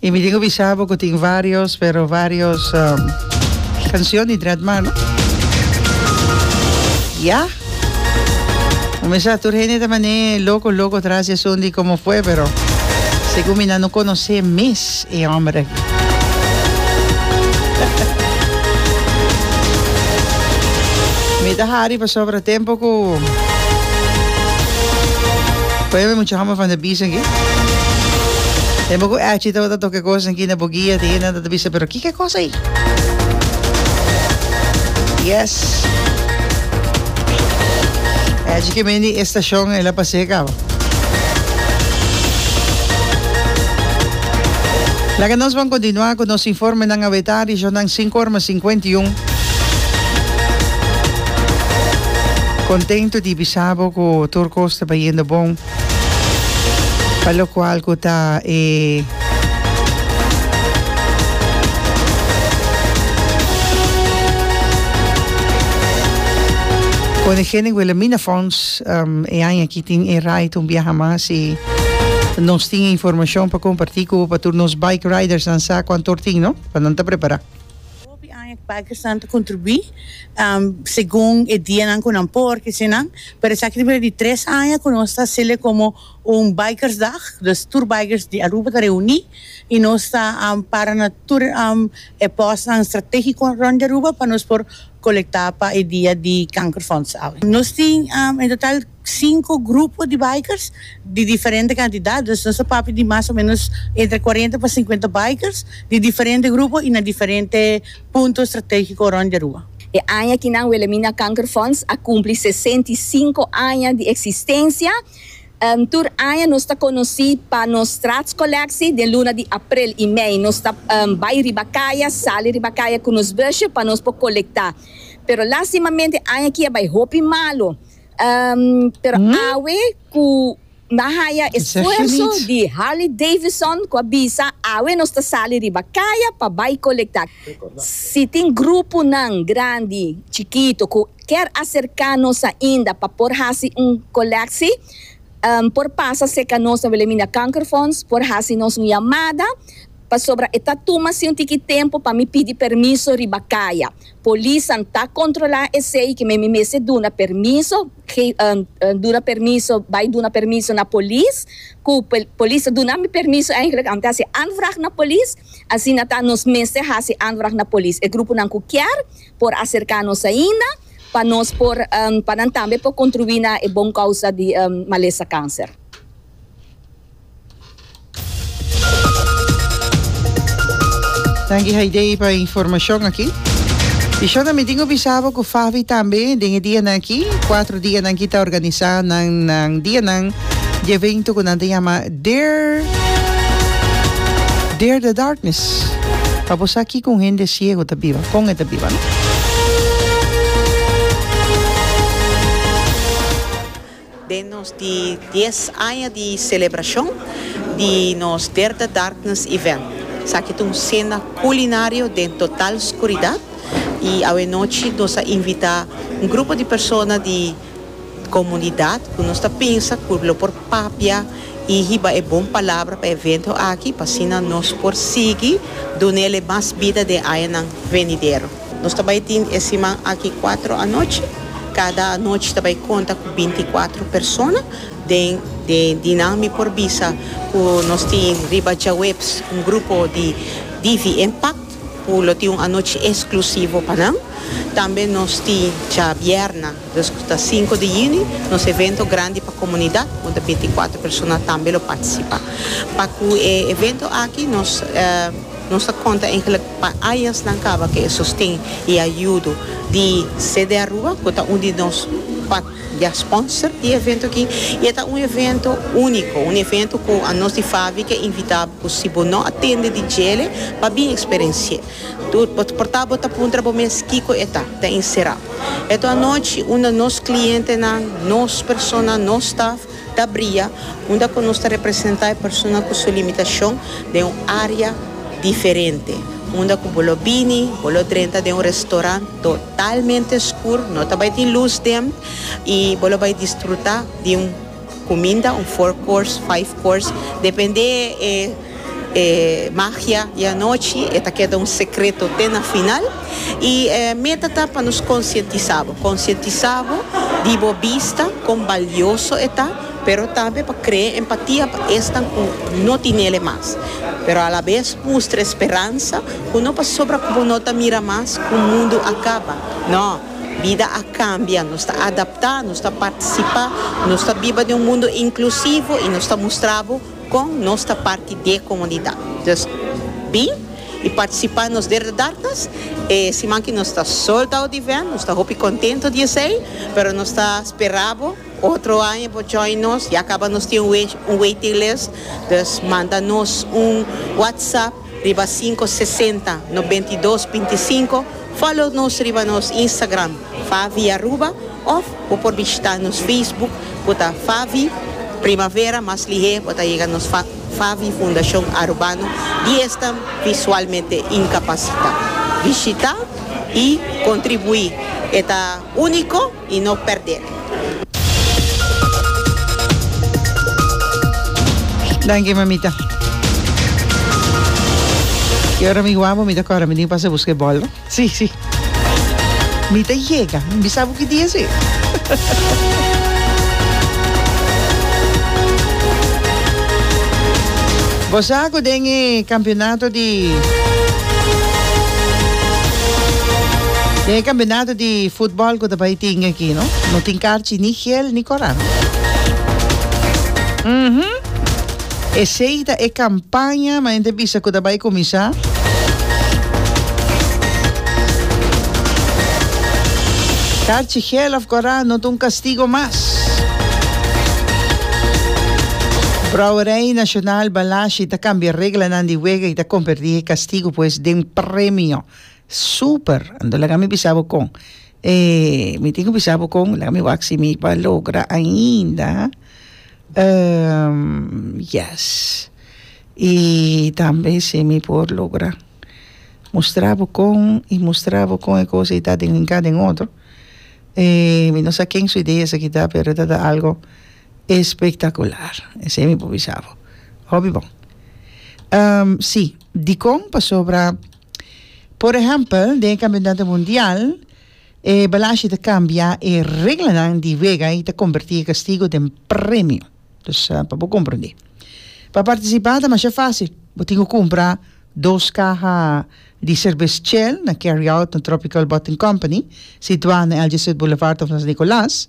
Y mi tin cu bisa bo cu tin varios pero varios cancion di Dread Mar no. Ya. Mi mester tur hende ta mane loco loco tras di asunto di como fue pero segun mi nan no conoce mes e homber aki. Mi ta hari pasobra tempo cu ponen mi mucha homber van de bies. Tem boku echi tabata toke kosa ki na bo guia te ena ta bisa pero kike kosa i? Yes. Echi ke men di estacion e la pase kaba. Laga nos ban kontinua ku nos informenan a weta rishonnan sinku orma sinkuenta i un. Kontentu di bisa bo ku tur kos ta bayendo bon. Pa lokual ku ta e. Koningin Wilhelmina Fonds e aña aki tin e ride un biaha mas i nos tin e informashon pa kompartí ku bo pa tur nos bike ridersnan sa ku antor tin no pa nan ta prepará. Hopi aña cu Pakistan ta contribui segun e dianan cu nan por ki sinan, pero esaki ta bira di tres aña cu nos ta haciel como un Bikersdag, dus tur bikers di Aruba ta reuni y nos ta para na tur e postnan strategico rond di Aruba pa nos por colecta pa e dia di Kankerfonds. Nos tin en total Sinku grupo di bikers di diferente kantidad, dus nos ta papia di mas o menos entre kuarenta pa sinkuenta bikers di diferente grupo i na diferente punto strategiko rònt di Aruba. E aña aki nan Wilhelmina Kankerfonds a kumpli sesenta i sinku aña di eksistensia. Tur aña nos ta konosí pa nos Straatskolleksie. Den luna di aprel i mei nos ta bai riba kaya, sali riba kaya ku nos busje pa nos por kolektá. Pero lastimamente aña aki a bai hopi malu. Um, pero awe cu nan haya esfuerzo di Harley Davidson cu a bisa awe nos ta sali riba caya pa bay colecta. Si tin gruponan grandi, chikito cu kier acerca nos ainda pa por haci un colectie, um, por pasa seca nos na Wilhelmina Kankerfonds, por haci nos un yamada, pasobra e ta tuma si un tiki tempo pa mi pidi permiso riba caya. Polisnan ta kontrolá esei ke men mi mester duna permiso, duna permiso, bai duna permiso na polis, ku polis ta duna mi permiso eigentlik om te hasi aanvraag na polis. Asina ta nos mester hasi aanvraag na polis. E gruponan ku kier por aserká nos ainda pa nos por, pa nan tambe por kontribuí na e bon kousa di malesa kanser. Danki Haidee pa e informashon aki. I shon ami tin ku bisa bo ku Favi tambe den e dianan aki, kuater dianan aki ta organisá nan nan dianan di evento ku nan ta yama Dare Dare the Darkness. Pa bo sa kiko un hende siego ta biba, kon e ta biba, no? Den nos di dies aña di celebracion di nos Derde Darkness Event, esaki ta un cena culinario den total scuridad y awe nochi nos a invita un grupo di persona di comunidad cu nos ta pensa cu lo por papia y hiba e bon palabra pa e evento aki pa asina nos por sigui dunele mas bida den añanan venidero. Nos ta bai tin e siman aki cuatro anochi. Cada anochi ta bai conta cu binti cuatro persona den e dinan mi por bisa cu nos tin riba djaweps un grupo di Divi Impact cu lo tin un anochi exclusivo pa nan. Tambe nos tin djabièrna dus cu ta cinco di yüni nos evento grandi pa comunidad con ta binti cuatro persona tambe lo participa. Pa cu e evento aki nos. Nos ta konta engelek pa ayasnan kaba ke e sosten i ayudo di CD Aruba ku ta un di nos pat ya sponsor di e evento aki i e ta un evento uniko, un evento ku anos di Favi ke invita bo ku si bo no a tende di djele pa bin eksperensi'e. Por ta bo ta puntra bo mes kiko e ta, ta insera. Eto anochi un di nos klientenan, nos persona, nos staf, Ta bria unda cu nos ta representa e persona cu su limitacion den un area diferente, unda cu bo lo bini, bo lo drenta den un restaurant totalmente scur, no ta bay tin luz den, y bo lo bay disfruta di un cuminda, un four course, five course, depende e. E magia di anochi e ta keda un sekreto te na final. I e meta ta pa nos konsientisá bo, konsientisá bo di bo bista kon balioso e ta, pero tambe pa krea empatia pa esnan ku no tinel e mas. Pero alabes mustra e speransa ku no pasobra ku bo no ta mira mas ku mundu a kaba. No, bida a kambia, nos ta adaptá, nos ta partisipá, nos ta biba den un mundu inklusivo i nos ta mustra bo. Con nos ta parti d'e comunidad. Dus bin y participa nos derde dartas e siman ki nos ta sold out event. Nos ta hopi contento di esey pero nos ta spera bo otro aña bo join nos. Ya caba nos tin un waiting list. Dus manda nos un WhatsApp. Riba cinco sesenta nobentidos binticinco follow nos riba nos Instagram Favi Aruba of bo por bishita nos Facebook cu ta Favi Primavera mas lihé bo ta yega nos Favi Fundacion Arubano di esnan visualmente incapacita bishita y contribui e ta unico. y no perdé. Danki mamita. Y ora mi guabu mi ta cora mi tin pasa busca e bol. Sí, sí. Mi ta llega. Mi bisa bu ki dia sí. Bosaco den e campeonato di den e campeonato di futbol cu ta bay tingue aki, no? No tin carchi ni gel ni coran. Uhum. Esey ta e campaña ma hende bisa cu ta bay cuminsa. Carchi, gel of coran no ta un castigo mas. Brouwerij Nacional Balashi ta cambia reglanan di wega y ta converti he castigo pues den premio. Super! Anto laga mi bisa bo con e mi tin cu bisa bo con laga mi wak si mi ba logra ainda ehm yes y tambe si mi por logra mustra bo con y mustra bo con e cosa y ta den un kado den otro e mi no sa ken su idea esaki ta pero ta ta algo espectacular esey mi por bisa bo hopi bon ehm si dicon pasobra. Por ehèmpel, den e Kampionato Mundial, e balashi ta kambia e reglanan di wega i ta kombertí e kastigu den premio. Dus, pa bo komprondé. Pa partisipá ta masha fásil. Bo tin ku kumpra dos kaha di serbes Shell na Carry Out na Tropical Bottling Company, situá na Algesud Boulevard of Las Nicolas.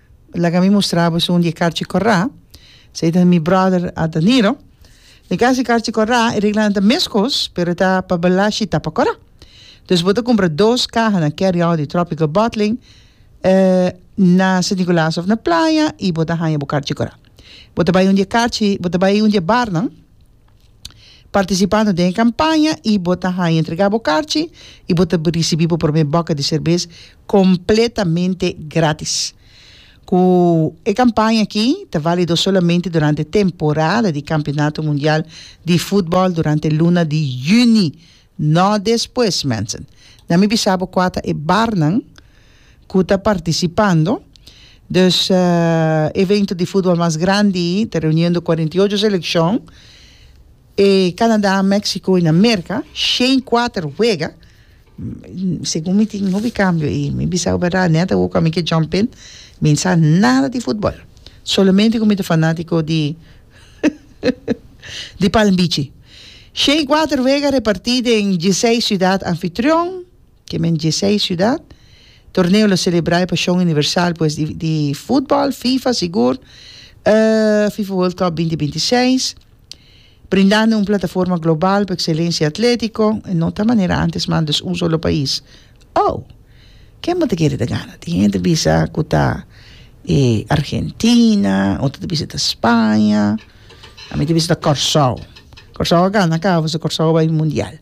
Laga mi mustra boso un di e karchi kòrá. Esei ta mi bròder Adaniro. E kas di karchi kòrá e reglanan ta mes kos pero e ta pa balashi i ta pa kòrá. Dus bo ta kumpra dos kaha na carry out di Tropical Bottling na Sint Nikolaas òf na playa i bo ta haña bo karchi kòrá. Bo ta bai un di e karchi bo ta bai un di e barnan. Partisipando den e kampaña i bo ta haña entregá bo karchi i bo ta risibí bo promé bòkè di serbes kompletamente grátis. Ku e kampaña akí ta válido solamente durante temporada di Kampionato Mundial di Futbòl durante luna di yüni No despues, mensen. Na mi bisa bo kua ta e barnan ku ta partisipando. Dus evento di futbol mas grandi ta reuniendo cuarenta y ocho seleccion. E Canada, Mexico y na Merca shen cuater wega. Segun mi tin hopi cambio y mi bisa bo berdad net awo cua mi ke jump in. Mi sa nada di futbol. Solamente cu mi ta fanatico di. di Palm Bichi. Shei kuater wega repartí den diesei siudat anfitrion, ke men diesei siudat. Torneo lo selebrá e pashon universal pues di di futbòl, fifa sigur, e fifa World Cup binti binti i seis, brindando un plataforma global pa ekselensia atlétiko, e no ta manera antes man, dus un solo pais. Oh! Ken bo ta kere ta gana? Tin hende ta bisa ku ta e Argentina, otro ta bisa ta Spaña, ami ta bisa ta Kòrsou. Kòrsou a gana kaba pasobra Kòrsou a bai mundial.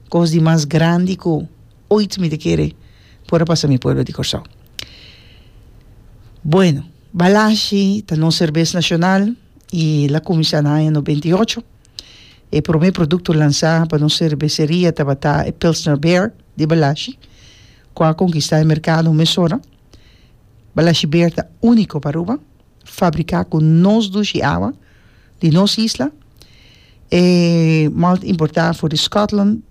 Kos di mas grandi ku oit mi ta kere por a pasa mi pueblo di Kòrsou. Bueno, Balashi ta nos serbes nashonal i el a kuminsá na aña nobenta i ocho. E promé produkto lansá pa nos serbeseria tabata e Pilsner Beer di Balashi, ku a konkistá e merkado mesora. Balashi Beer ta úniko pa Aruba, fabriká ku nos dushi awa di nos isla, e malt importá for di Scotland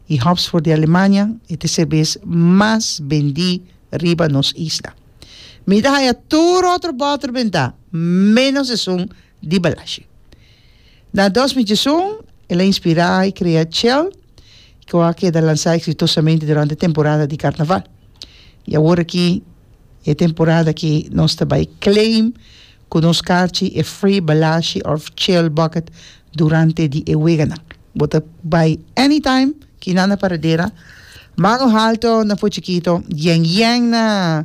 i hops for di Alemania. E ta e serbes mas bendí riba nos isla. Mi ta haña tur otro bòter bentá, ménos esun. di Balashi. Na dos mi diesun, el a inspirá i krea Chell, ku a keda lansá eksitosamente durante temporada di karnaval. I awor aki e temporada ki nos ta bai claim ku nos karchi e free Balashi òf Chell bucket durante di e weganan. Bo ta bai anytime ki nan na Paradera, Mango Halto na Fo Chikito, Yen Yen na.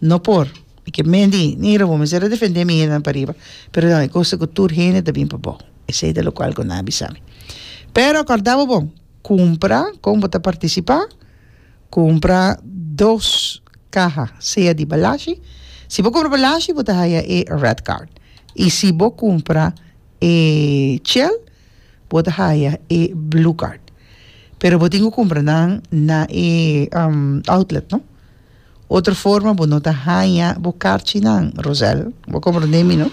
No por, i ke men di, ni Robon mester a defendé mi hendenan pariba, pero nan e kos ku tur hende ta bin pabou. Esei ta lokual ku nan a bisa mi. Pero kòrda bo bon, kumpra, kon bo ta partisipá, kumpra dos kaha, sea di balashi, si bo kumpra balashi bo ta haya e Red Card, i si bo kumpra e chèl bo ta haya e Blue Card, pero bo tin ku kumpra nan na e outlet, no. Otro forma bo no ta haña bo karchinan, Rosel. Bo komprondé mi, no?